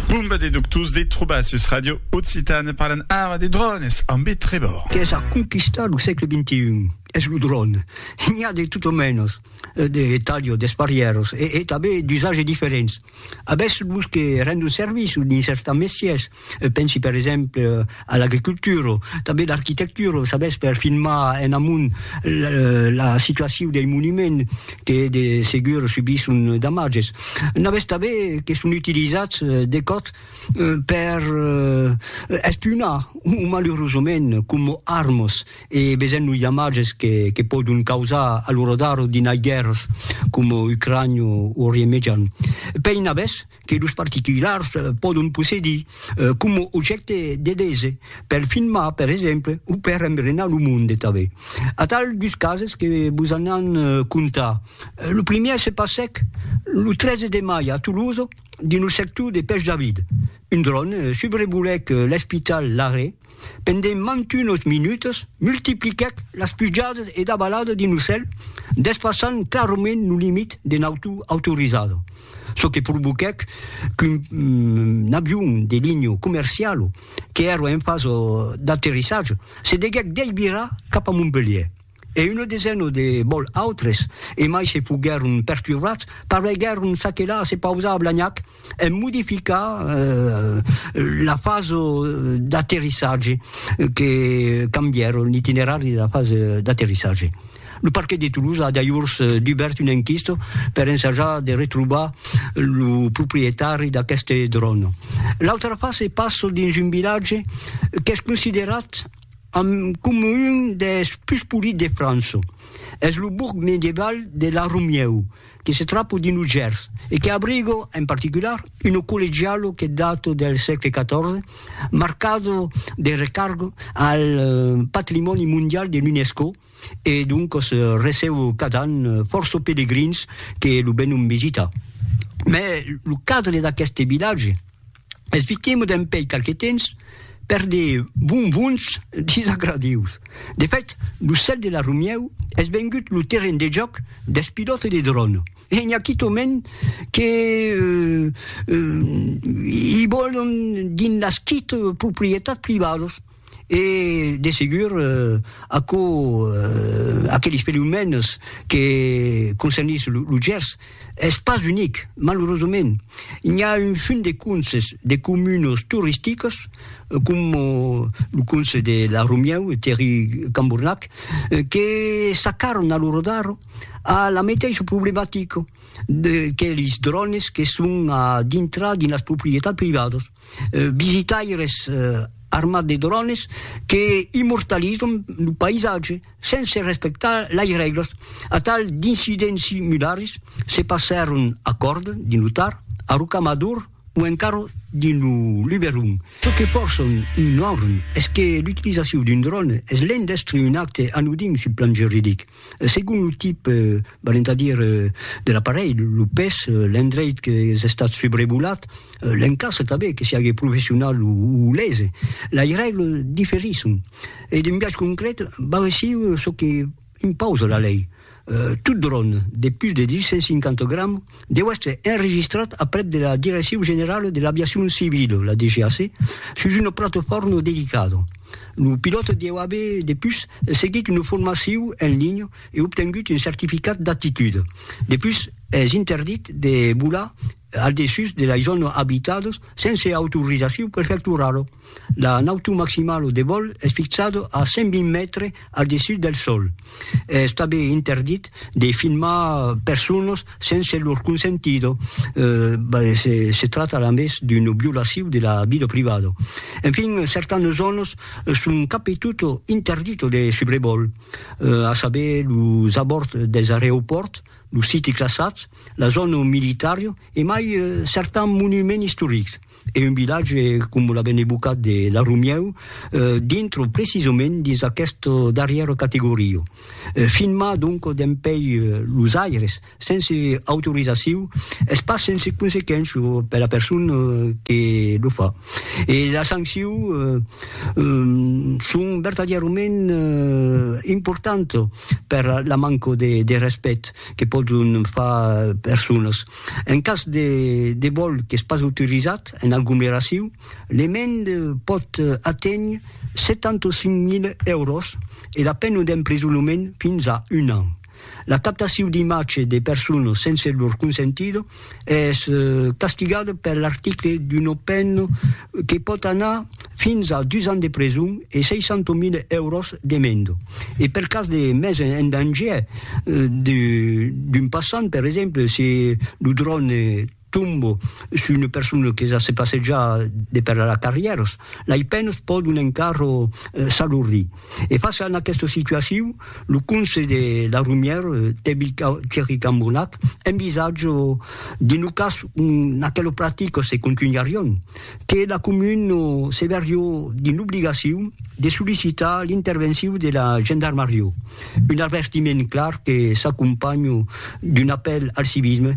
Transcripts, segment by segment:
Bomba de doctors de trobar sus Ràdio Occitània parlan ara de drònes ambe Trevor. Qu'es a conquistar lo sègle xxi es lo dròn. N'i a de tot o mènos, de talhos, d'esparièros e tanben d'usatges diferents. Avètz los que rendon servici dins cèrta mestièrs Pensi per exemple a l'agricultura, tanben l'arquitectura, sabètz, per filmar en amont la situacion dei monuments que de segur subisson damatges. N'avètz tanben que son utilizats de còps per espionar, o malurosament coma armas, e vesèm los damatges que pòdon causar a lo radar dinai guèrras coma Ucrània o Orient Mejan. Pei n'avètz? que los particulars pòdon possedir coma objècte de lese, per filmar, per exemple, o per embrenar lo monde tanben. Atal dus cases que vos an an contar. Lo primièr se passèc lo 13 de mai a Tolosa, dins lo sector de Pèch David. Un dròn subrevolèc l'espital Larrey. Pendent mantunos minutas, multipliquèc las pujadas e davaladas d'un ocèl, despassant clarament lo limit de nauta autorizada, çò que provoquèc qu'un avion de linha comerciala, qu'èra en fasa d'aterrissatge, se deguèc desvirar cap a Montpelhièr. e una desena de bòl autres, e mai se foguèron perturbats, pareguèron s'aquelar a se pausar a Blagnac en modificar la fasa d'aterrissatge, que cambièron l'itinerari de la fasa d'aterrissatge. Lo parquet de Toulouse a dajors dubèrt una enquista per ensajar de retrobar lo proprietari d'aqueste dròn. L'autra fasa passa dins un vilatge qu'es considerat, Amb coma un des pus polits de França. Es lo bourg medieval de La Romieu, que se trapa dins lo Gers e que abriga, en particular, una collegiala que data del sègle XIV, marcada de recarga al patrimòni mondial de l'UNESCO e doncas receba cada an fòrça pelegrins que lo venon visitar. Mai lo cadre d'aqueste vilatge. Espiquemo dempèi qualque temps per de bonbons disagradius. De fèt, lo cèl de la Romièu es vengut lo terren de jòc dels pilòtes de dròn e n'i a quitòment que i vòlon dins las quite proprietats privadas. E, de segur, aquò, aqueles fenomèns que concernís lo Gers, es pas unic, malurosament. N'i a un fum de conses, de comunas toristicas, coma lo conse de La Romieu, Thierry Cambournac, que s'acarran a lo rodar a la meteissa problematica de que lis drònes que son a dintrar dins las proprietats privadas. visitaires armats de drones que immortalizan lo païsatge sense respectar las règlas. Atal d'incidents similars se passèron a Còrd, dins lo Tar, a Rocamador o encara dins lo Luberon. Çò que fòrçan ignoran es que l'utilizacion d'un drone es l'en d'èstre un acte anodin sul plan juridic. Segon lo tip, valent a dire, de l'aparelh, lo pes, l'endreit qu'es estat subrevolat, l'encastre tanben, que siague professional o lese, lei règles diferisson e d'un biais concret val aicí çò que impausa la lei, tot dròn de pus de 250 grams deu èstre enregistrat aprèp de la Direccion Generala de l'Aviacion Civila, la DGAC, sus una platofòrna dedicada. Lo pilòt deu aver depus seguit una formacion en linha e obtengut un certificat d'aptitud. Depus es interdit de volar al dessús de las zònas abitadas sense autorizacion prefectorala. La nautor maximala au devòl es fixada a 120 mètres al dessús del sòl. Es tanben interdit de filmar personas sense lor consentida, se tracta a més d'una violacion de la vida privada. Enfin, certanas zònas son cap e tot interditas de subrevòl, a saber, los abòrds dels areopòrts, los siti classats, la zòna militària e mai certans monuments istorics. e un vilatge com la Benebucat de la Romieu dintre precisament dins aquesta darrièra categoria. Filmar donc dempèi los aires sense autorizaciu es pas sense consequéncia per la persona que lo fa e las sancciu son vertadièrament importantas per la manca de respèct que pòdon far personas. En cas de de vòl qu'es pas autorizat en aglomeraciu, l'emenda pòt aténher 75.000 èuros e la pena d'emprisonament fins a un an. La captaciu d'imatge de personas sense lor consentida es castigada per l'article d'una pena que pòt anar fins a dus ans de preson e 600.000 èuros de menda, e per cas de mes en dangièr d'un passant, per exemple, se lo dròn tomba sus una persona que se passeja de per las carrièras, lei penas pòdon encara s'alordir. E fàcia en aquesta situacion, lo conse de la Romièr, Tebil Thierry Cambonnac, envisatja dins lo cas ont aquela practica se contunharion, que la comuna se vèrió dins l'obligacion de sollicitar l'intervencion de la gendarmaria, un avertiment clar que s'acompanha d'un apèl al civisme,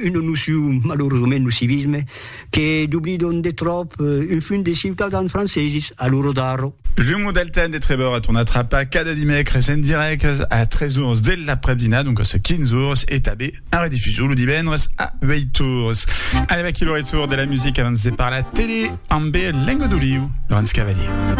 una nocion, malaurosament, lo civisme, Que doblidon de tròp un fum de ciutadans franceses a lo Rodarro. L'umo del temps de Trevor a tornat trapar cada dimècres en dirèct a 3 ors de l'après-dinat, doncas 15 ors, e tanben en redifusion lo divendres a 8 ors. Anèm aquí lo retour de la musica abans de parlar tele ambe Lengo d'Oliu, Laurence Cavalier.